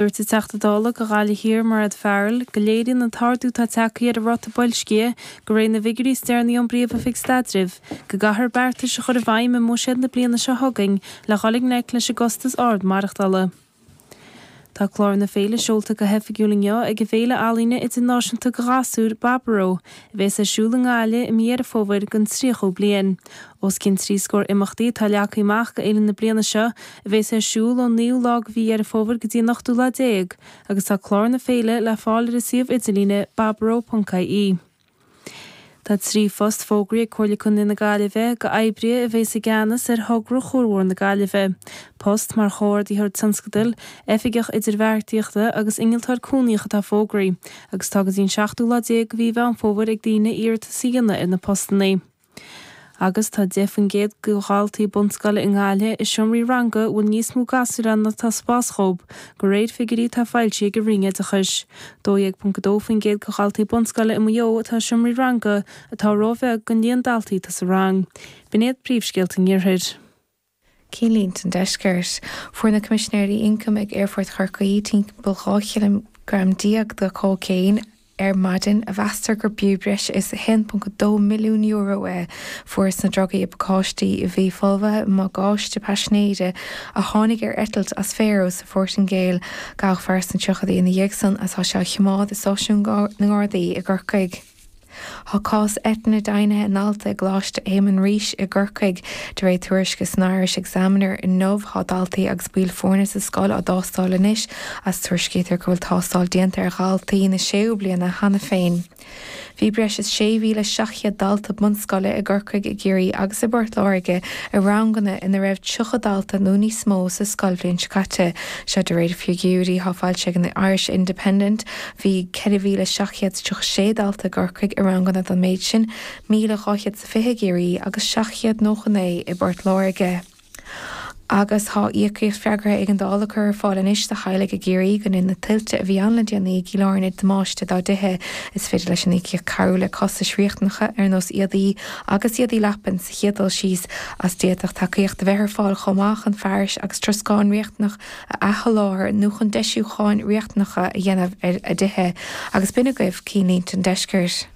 Dúirt an Teachta Dála do Ghaillimh Thiar Mairéad Farrell go léiríonn an t-ardú atá tagtha ar an ráta boilscithe go réir na bhfigiúirí is déanaí ón bPríomhoifig Staidrimh go gcaithfear beartais a chur i bhfeidhm i mbuiséad na bliana seo chugainn le dhul i ngleic leis an gcostas ard maireachtála. Tá clár na féile seolta go hoifigiúil inniu ag an bhféile ealaíne idirnáisiúnta do ghasúir, Baboró, a bheas ar siúl i nGaillimh i mí Dheireadh Fómhair don 30ú bliain. Os cionn trí scór imeachtaí atá leagtha amach go fhéile na bliana seo a bheas ar siúl ón naoú lá de mhí Dheireadh Fómhair go dtí an ochtú lá déag agus tá clár na féile le fáil ar a suíomh idirlíne baboró.ie. Tá trí phost fógraithe ag Comhairle Contae na Gaillimhe go oibrithe a bheas i gceannas ar thogra chuarbhóthar na Gaillimhe, post mar chomhordaitheoir tionscadail, oifigeach idirbheartaíochta agus innealtóir cónaitheach atá fógraithe agus tá go dtí an seachtú lá déag de mhí Mheán Fómhair ag daoine iarratas a dhéanamh ar na postanna. Agus tá 10% de dhaltaí bunscoile i nGaillimh i seomraí ranga a bhfuil níos mó gasúir ann ná atá spás dhóibh, go réir figiúirí atá foilsithe ag an Roinn Oideachais. 12.2% de dhaltaí bunscoile i Maigh Eo atá i seomraí ranga, atá róbheag don líon daltaí atá sa rang. B'in iad príomhscéalta an Iarthair. Cinnlínte an Deiscirt. Fuair na Coimisinéirí Ioncaim ag Aerfort Chorcaí timpeall 12 chileagram de chóicéin ar maidin a mheastar gurbh fhiú breis is €1.2 milliún é. Fuarthas na drugaí i bpacáistí a bhí folmhaithe i mbagáiste paisinéire a tháinig ar eitilt as Faro sa Phortaingéil. Gabhadh fear sna tríochaidí ina dhiaidh san is tá sé á choimeád i stáisiún na nGardaí i gCorcaigh. Tá cás eitinne deimhnithe i ndalta i gColáiste Éamonn Rís i gCorcaigh. De réir tuairisce san Irish Examiner inniu tá daltaí agus baill foirne sa scoil á dtástáil anois is tuairiscítear go bhfuil tástáil déanta ar dhaltaí na séú bliana cheana féin. Bhí breis is 6,700 dalta bunscoile i gCorcaigh, i gCiarraí agus i bPort Láirge i ranganna ina raibh 30 dalta nó níos mó sa scoilbhliain seo caite. Seo de réir figiúirí atá foilsithe ag an Irish Independent. Bhí 4,736 dalta i gCorcaigh i ranganna den méid sin, 1,200 is 20 i gCiarraí agus 799 i bPort Láirge. Agus tá íocaíocht freagartha éigeandála le cur ar fáil anois do theaghlaigh i gCiarraí go ndin na tuilte a bhí ann le déanaí i gCill Airne damáiste dá dtithe. Is féidir leis an íocaíocht cabhrú le costais riachtanacha ar nós éadaí agus éadaí leapan sa chéad dul síos, is d'fhéadfadh tacaíocht a bheith ar fáil chomh maith chun fearais agus troscán riachtanach a athsholáthar nó chun deisiúcháin riachtanacha a dhéanamh ar a dtithe, agus b'in agaibh Cinnlínte an Deiscirt.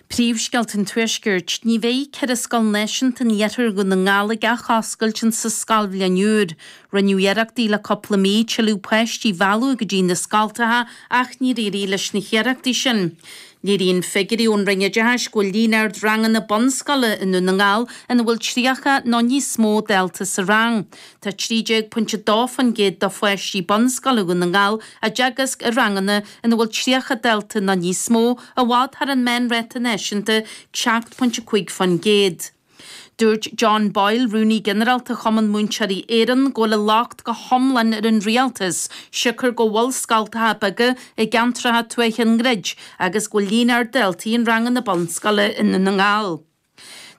Príomhscéalta an Tuaiscirt, Ní bheidh ceithre scoil náisiúnta in iarthar Dhún na nGall ag athoscailt insa scoilbhliain úr. Rinneadh iarrachtaí le cúpla mí tuilleadh páistí a mhealladh go dtí na scoltacha ach níor éirigh leis na hiarrachtaí sin. Léiríonn figiúirí ón Roinn Oideachais go bhfuil líon ard ranganna bunscoile i nDún na nGall ina bhfuil 30 nó níos mó dalta sa rang. Tá 13.2% de pháistí bunscoile Dhún na nGall á dteagasc i ranganna ina bhfuil 30 dalta nó níos mó, i bhfad thar an meánráta náisiúnta 7.5%. Dúirt John Boyle, Rúnaí Ginearálta Chumann Múinteoirí Éireann, go bhfuil an locht go hiomlán ar an rialtas, siocair go bhfuil scoltacha beaga i gceantracha tuaithe á ndruid agus go bhfuil líon ard daltaí in ranganna bunscoile i nDún na nGall.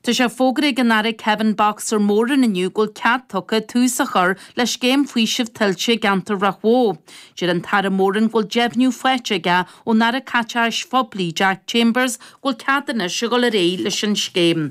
Tá sé fógartha ag an Aire Kevin 'Boxer' Moran inniu go bhfuil cead tugtha tús a chur le scéim faoisimh tuilte i gceantar Ráth Bhoth. Deir an tAire Moran go bhfuil deimhniú faighte aige ón Aire Caiteachais Phoiblí Jack Chambers go bhfuil cead anois a dhul ar aghaidh leis an scéim.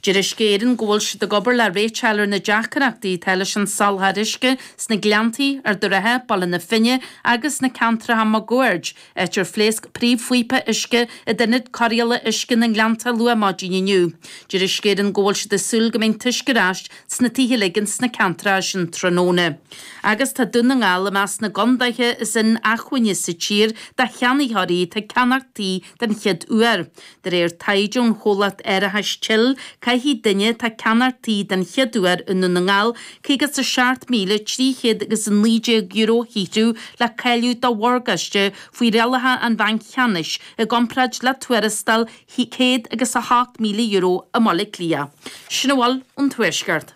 Deir Uisce Éireann go bhfuil siad ag obair le réiteach a fháil ar na deacaireachtaí atá leis an soláthar uisce sna Gleanntaí, Ard an Rátha, Baile na Finne agus sna ceantracha máguaird. Áit ar phléasc príomhphíopa uisce in ionad cóireála uisce na nGleannta luath maidin inniu. Deir Uisce Éireann go bhfuil siad ag súil go mbeidh an t-uisce ar ais sna tithe uilig ins na ceantracha sin tráthnóna. Agus tá Dún na nGall i measc na gcondaetha is inacmhainne sa tír do cheannaitheoirí atá ag ceannach tí den chéad uair. De réir taighde ón chomhlacht árachais Chill, caithfidh duine atá ag ceannach tí den chéad uair i nDún na nGall €57,319 a shaothrú le cáiliú do mhorgáiste faoi rialacha an Bhainc Cheannais, i gcomparáid le tuarastal céad agus a hocht míle euro i mBaile Átha Cliath. Sin a bhfuil ón Tuaisceart.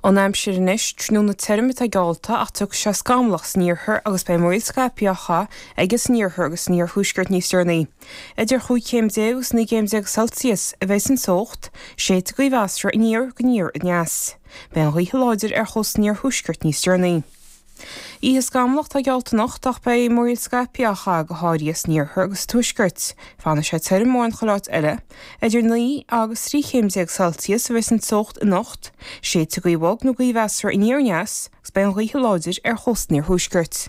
Ón aimsir anois, tráthnóna tirim atá geallta ach tiocfaidh sé scamallach san iarthar agus beidh múraíl scaipthe á chaitheamh aige san iarthar agus san iarthuaisceart níos deireanaí. Idir chúig chéim déag agus naoi gcéim déag Celsius a bheas an teocht, séidfidh gaoth mheasartha aniar go aniar aneas. Beidh an ghaoth láidir ar chósta an iarthuaiscirt níos deireanaí. Oíche scamallach atá geallta anocht ach beidh múraíl scaipthe á chaitheamh go háirithe san iarthar agus sa tuaisceart. Fanfaidh sé tirim mórán chuile áit eile. Idir naoi agus trí chéim déag Celsius a bheas an teocht anocht. Séidfidh gaoth bhog nó gaoth mheasartha aniar aneas agus beidh an ghaoth láidir ar chósta an iarthuaiscirt.